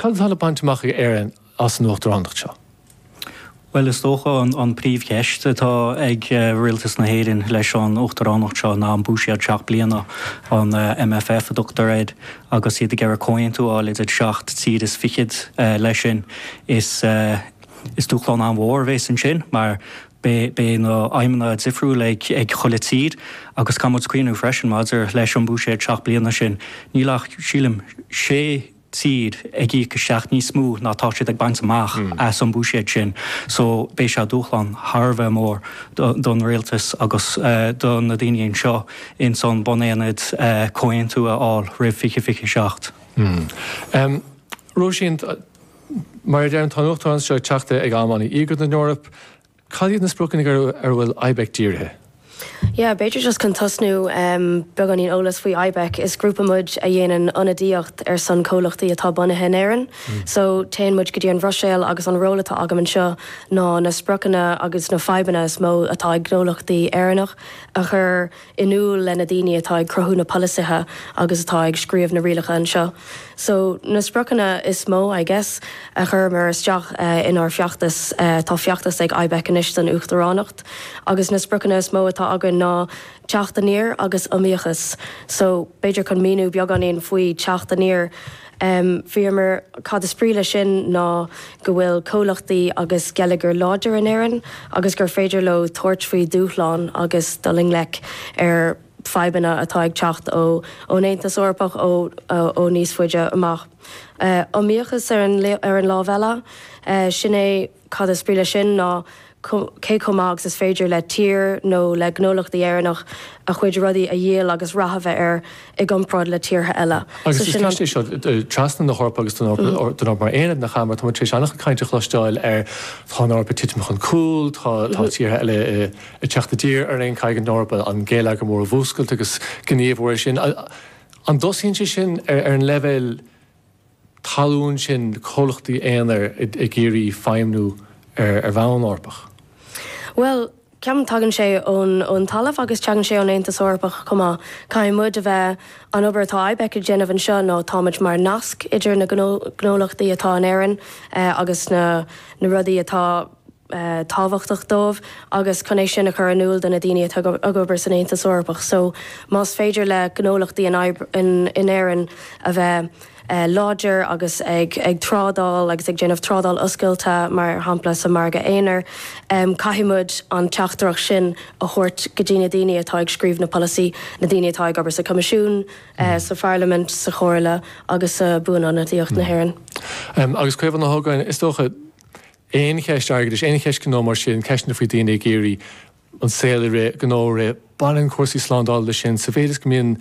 Cad atá le baint amach ag Éirinn as an Uachtaránacht seo? Bhuel, is dócha an príomhcheist atá ag Rialtas na hÉireann leis an Uachtaránacht seo ná an búiséad seacht bliana, an MFF a dtugtar air, agus iad ag iarraidh comhaontú a fháil idir seacht dtír is fichead. Leis sin, is dúshlán an-mhór a bhéas ansin mar beidh na haidhmeanna difriúil ag chuile tír agus caithfimid cuimhneamh freisin maidir leis an búiséad seacht bliana sin, níl ach, sílim, sé. tír ag íoc isteach níos mó ná tá siad ag baint amach as an mbuiséad sin. So, beidh sé dúshlán thar a bheith mór don Rialtas agus do na daoine anseo ins an buanaonad comhaontú a fháil roimh fiche fiche a seacht. Róisín, mar a deir, tá an Uachtaránacht seo ag teacht ag am an-íogair don Eoraip, Cad iad na spriocanna ar a bhfuil IBEC dírithe? Yeah, b'fhéidir just chun tosnú em beagáinín eolas faoi IBEC. Is grúpa muid a dhéanann ionadaíocht ar son comhlachtaí atá bunaithe in Éirinn. So téann muid go dtí an Bhruiséil agus an ról atá agam anseo ná na spriocanna agus na fadhbanna is mó atá ag gnólachtaí Éireannach a chur in iúl le na daoine atá ag cruthú na polasaithe agus atá ag scríobh na rialacha anseo. So, na spriocanna is mó, I guess, a chuireamar isteach inár feachtas, tá feachtas ag IBEC anois don Uachtaránacht, agus na spriocanna is mó atá againn ná teacht aniar agus iomaíochas. So, b'fhéidir chun míniú beagáinín faoi teacht aniar, Bhíomar, cad is brí le sin ná go bhfuil comhlachtaí agus geilleagar láidir in Éirinn agus gur féidir leo tabhairt faoi dhúshláin agus dul i ngleic ar fadhbanna atá ag teacht ó ón Aontas Eorpach ó ó níos faide amach. Iomaíochas ar an ar an lámh eile, sin é. Cad is brí leis sin ná cé chomh maith agus is féidir le tír nó le gnólachtaí Éireannach a chuid rudaí a dhíol agus rath a bheith air i gcomparáid le tíortha eile. Agus is ceist é seo trasna na hEorpa agus don Eoraip mar aonad nach ea mar tá muid tar éis an-chuid cainte a chloisteáil ar tá an Eoraip ag titim chun cúil, tá tíortha eile ag teacht i dtír ar aon, caithfidh an Eoraip an geilleagar mór a mhúscailt agus gníomhú ar sin. An dtosaíonn sé sin ar an leibhéal talún sin comhlachtaí aonair ag iarraidh feidhmniú ar bhonn Eorpach? Bhuel, ceapaim tagann sé ón ón talamh agus tagann sé ón Aontas Eorpach chomh maith. Caithfidh muid a bheith an obair atá IBEC ag déanamh anseo ná táimid mar nasc idir na gnó gnólachtaí atá in Éirinn eh agus na na rudaí atá tábhachtach dóibh agus chun é sin a chur in iúl do na daoine atá ag obair san Aontas Eorpach. So más féidir le gnólachtaí in Éirinn a bheith láidir agus ag trádáil agus ag déanamh trádáil oscailte mar shampla sa Mhargadh Aonair, caithfidh muid an teachtaireacht sin a thabhairt go dtí na daoine atá ag scríobh na polasaí, na daoine atá ag obair sa Choimisiún, sa Pharlaimint, sa Chomhairle agus sa Bhuanionadaíocht na hÉireann. Agus Caomhán Ó hÓgáin, is dócha, Aon cheist airgeadais, aon cheist gnó mar sin, ceisteanna faoi daoine ag iarraidh an saol a rith, gnó a rith, baineann cúrsaí slándála leis sin. Sa mhéid is go mbíonn,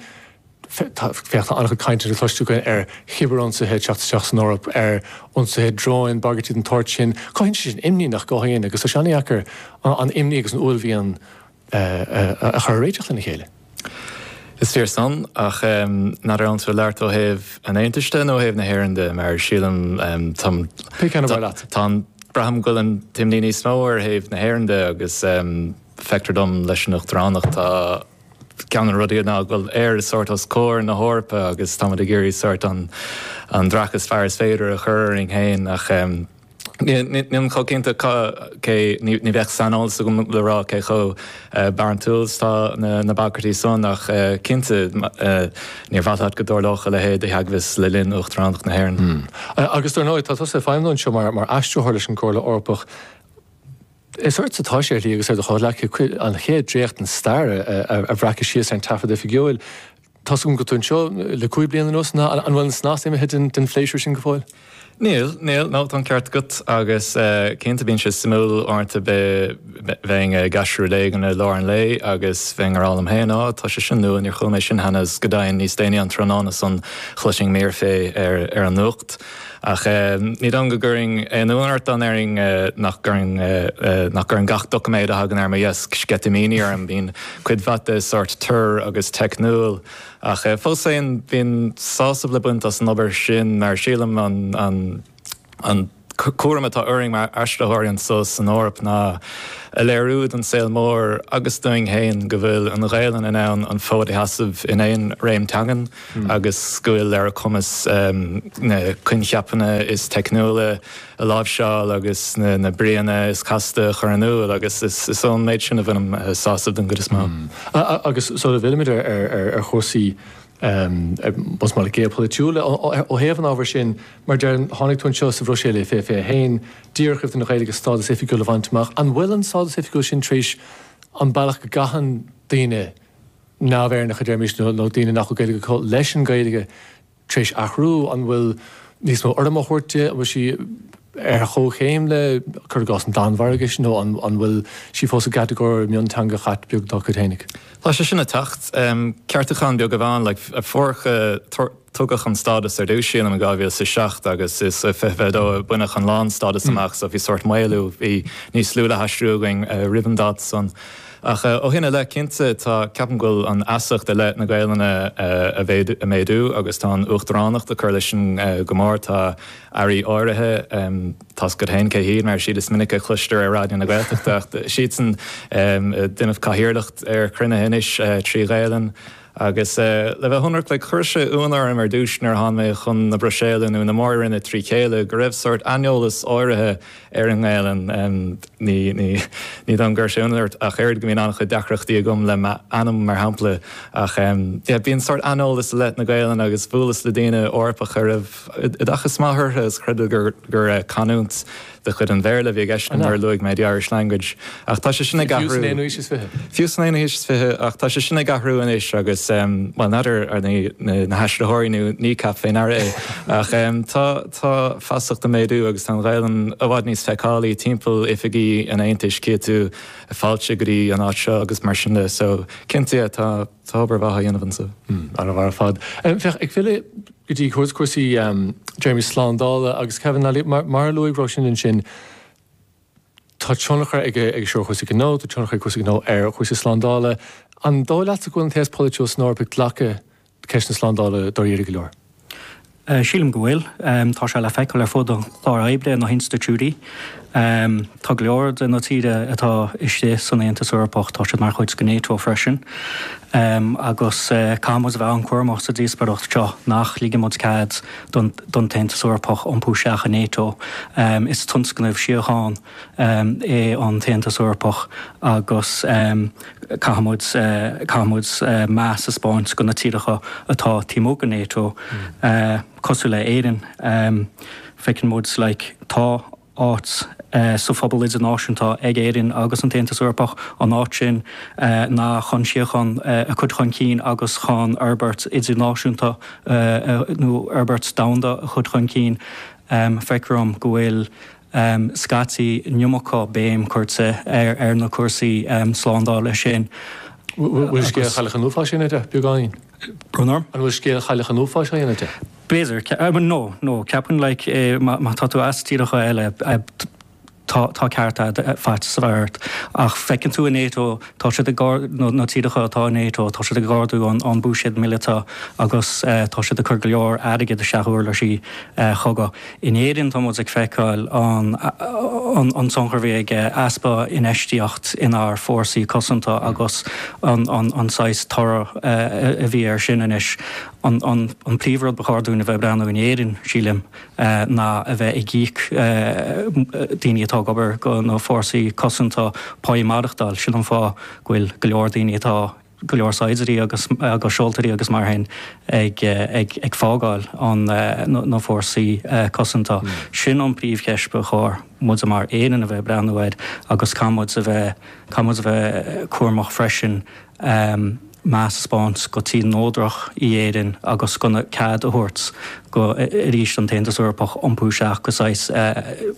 féach tá an-chuid cainte le cloisteáil againn ar chibear-ionsaithe ag teacht isteach san Eoraip, ar ionsaithe dróin, bagairtí den tsórt sin. Cothaíonn sé sin imní nach gcothaíonn agus tá sé an-deacair an imní agus an uaillmhian a chur a réiteach lena chéile. Is fíor san, ach n'fheadar anso ag labhairt ó thaobh an Aontais de nó ó thaobh na hÉireann de, mar sílim, táim. Pé ceann ab fhearr leat. Táim, braithim go bhfuil an t-imní níos mó ar thaobh na hÉireann de agus feictear dom leis an Uachtaránacht tá, ceann de na rudaí ná go bhfuil Éire sórt os comhair na hEorpa agus táimid ag iarraidh sórt an dreach is fearr is féidir a chur orainn féin ach, Nílim chomh cinnte cé, ní bheadh saineolas agam le rá cé chomh barántúil is atá na bagairtí san ach cinnte níor mhaith leat go dtarlódh a leithéid de theagmhas le linn Uachtaránacht na hÉireann. Agus dar ndóigh, tá tusa ag feidhmiú anseo mar aistritheoir leis an gComhairle Eorpach. Is ortsa atá sé ar shlí agus ar do chomhghleacaithe an chéad dréacht den stair a bhreacadh síos ar an taifead oifigiúil. Tá's agam go bhfuil tú anseo le cúig bliana anuas ná an bhfuil an snas imithe den phléisiúr sin go fóill? Níl, níl, nó tá an ceart agat agus cinnte bíonn sé suimiúil uaireanta a bheith bheinn ag aistriú rud éigin i lár an lae agus bheinn á rá liom féin, á, tá sé sin nua, níor chuala mé sin cheana agus go deimhin níos déanaí an tráthnóna san chloisinn mír fé ar an nuacht. Ach ní dóigh liom go gcuirfinn aon ionadh ort dá ndéarfainn nach gcuireann gach doiciméad a thagann ar mo dheasc sceitimíní orm. Bíonn cuid mhaith de sórt tur agus teicniúil, ach fós féin bíonn sásamh le baint as an obair sin mar sílim an cúram atá orainn mar aistritheoirí anso san Eoraip ná a léiriú don saol mór agus dúinn féin go bhfuil an Ghaelainn in ann an fód a sheasamh in aon réim teangan. agus go bhfuil ar a cumas na coincheapanna is teicniúla a láimhseáil agus na bríonna is casta a chur in iúl agus is ón méid sin a bhainim sásamh don gcuid is mó. Agus sula bhfillimid ar chúrsaí más maith leat géopholaitiúla ó thaobh an ábhair sin, mar a deirim, tháinig tú anseo sa Bhruiséil fiche fiche a haon, díreach roimh don Ghaeilge stádas oifigiúil a bhaint amach. An bhfuil an stádas oifigiúil sin tar éis an bealach go gcaitheann daoine, neamh-Éireannacha, deirimis, nó daoine nach bhfuil Gaeilge acu leis an Ghaeilge tar éis athrú? An bhfuil níos mó urraim á thabhairt di? An bhfuil sí ar chomhchéim le, cuir i gcás, an Danmhairgis nó an bhfuil sí fós i gcatagóir mionteangacha beag dá cuid féinig? Tá sé sin ag teacht. Ceartúchán beag amháin, like, a fuair Tugadh an stádas ar dtús, sílim, i 2007 agus is i 2022 a baineadh an lánstádas amach so bhí sórt maolú, bhí níos lú le haistriú againn roimh an dáta san. Ach ó shin i leith, cinnte, tá, ceapaim go bhfuil an fheasacht i leith na Gaelainne ag méadú agus tá an Uachtaránacht ag cur leis sin go mór, tá Airí áirithe, tá's agat féin cé hiad, mar is iad is minice a chloistear ar Raidió na Gaeltachta ach siadsan ag déanamh cathaoirleacht ar chruinnithe anois trí Ghaelainn. Agus le bheith ionraic like chuir sé ionadh orm ar dtúis nuair a tháinig mé chun na Bruiséile nó na Mór-Roinne trí chéile go raibh sórt aineolas áirithe ar an nGaelainn em ní, ní, ní dóigh liom go gcuirfeadh sé ionadh ort ach oiread go mbíonn an-chuid deacrachtaí agam le m'ainm mar shampla ach em yeah bíonn sórt aineolas i leith na Gaelainn agus bhuaileas le daoine Eorpacha a raibh oideachas maith orthu is chreideadar gur, gur eh canúint de chuid an Bhéarla a bhí i gceist nuair a luaigh mé the Irish language, ach tá sé sin ag athrú. Fiú san aonú haois is fiche? Fiú san aonú haois is fiche, ach tá sé sin ag athrú anois agus, bhuel, n'fheadar ar na haistritheoirí nó Kneecap fé ndear é, ach tá feasacht ag méadú agus tá an Ghaelainn i bhfad níos feiceálaí timpeall oifigí an Aontais, cíonn tú fáilte go dtí an áit seo agus mar sin de, so, cinnte, tá obair mhaith á dhéanamh anso. Ana-mhaith ar fad. Féach, ag filleadh. go dtí cúrsaí deirimis slándála agus Kevin Lally. Mar a luaigh Róisín ansin, tá tionchar aige seo ar chúrsaí gnó, tá tionchar ag cúrsaí gnó ar chúrsaí slándála. An dóigh leatsa go bhfuil an t-aos polaitiúil san Eoraip ag glacadh ceist na slándála dáiríre go leor? Sílim go bhfuil. Tá sé le feiceáil ar fud an chláir oibre, na hinstitiúidí. Ámh, tá go leor de na tíre atá istigh san Aontas Eorpach, tá siad mar chuid de Nato freisin, ámh, agus caithfidh muid a bheith an-cúramach sa díospaireacht seo nach ligfidh muid cead don tAontas Eorpach iompú isteach i Nato. Ámh, is tionscnamh síocháin, ámh, é an tAontas Eorpach agus, ámh, caithfidh muid, caithfidh muid meas a 'spáint do na tíreacha atá taobh amuigh de Nato. Ámh. cosúil le Éirinn, feiceann muid like tá áit sa phobal idirnáisiúnta ag Éirinn agus an tAontas Eorpach, an áit sin ná chun síocháin a chur chun cinn agus chun fhorbairt idirnáisiúnta nó fhorbairt domhanda a chur chun cinn. Feictear dhom go bhfuil scaití an iomarca béim curtha ar na cúrsaí slándála sin. Bhfuil scéal Chailleacha Nuapha sin ar bith beagáinín? Conor. An bhfuil scéal chailleach an uafáis á dhéanamh de? B'fhéidir. No, no. Ceapaim like eh má tá tú as tíortha eile eh tá tá ceart a'd eh faighte sa mhéid ort ach feiceann tú i NATO tá siad ag ár no na tíreacha atá i NATO tá siad ag ardú an an buiséad míleata agus eh tá siad ag cur go leor airgid isteach uirlisí eh cogaidh. In Éirinn tá muid ag feiceáil an tionchar a bhí ag easpa infheistíocht inár bhfórsaí cosanta agus an saghas toradh a bhí air sin anois. An príomh rud ba chóir dúinn a bheith ag breathnú in Éirinn, sílim, ná a bheith ag íoc daoine atá ag obair go na fórsaí cosanta, pá maireachtáil. Sin an fáth go bhfuil go leor daoine atá. go leor saighdiúirí agus seoltóirí agus mar sin ag fágáil na fórsaí cosanta. Sin an príomh cheist ba chóir muid mar Éirinn a bheith ag breathnú air agus caithfidh muid a bheith caithfidh muid a bheith cúramach freisin meas a spáint go tír neodrach í Éirinn agus gan cead a thabhairt go arís don tAontas Eorpach iompú isteach go saghas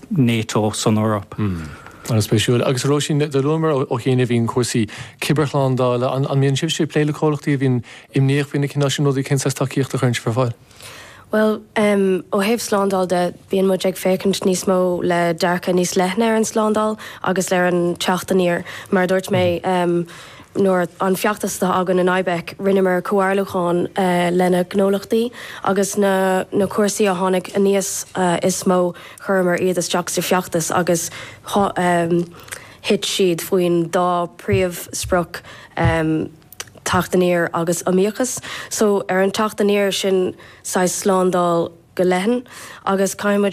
Nato san Eoraip. An-spéisiúil. Agus a Róisín, do luamar ó chianaibh ansin cúrsaí cibearshlándála. An mbíonn sibhse ag plé le comhlachtaí a bhíonn imníoch faoi na cineálacha sin rudaí, cén saghas tacaíochta a chuireann sibh ar fáil? Bhuel, ó thaobh slándáil de, bíonn muid ag féachaint níos mó le dearcadh níos leithne ar an slándáil agus ar an teacht aniar. Mar a dúirt mé, nuair, an feachtas atá againn in IBEC, rinneamar comhairliúcháin leis na gnólachtaí agus na na cúrsaí a tháinig aníos is mó, Chuireamar iad isteach sa feachtas agus thit siad faoin dá príomhsprioc, teacht aniar agus iomaíochas. So, ar an teacht aniar, sin saghas slándáil go leathan agus caithfidh muid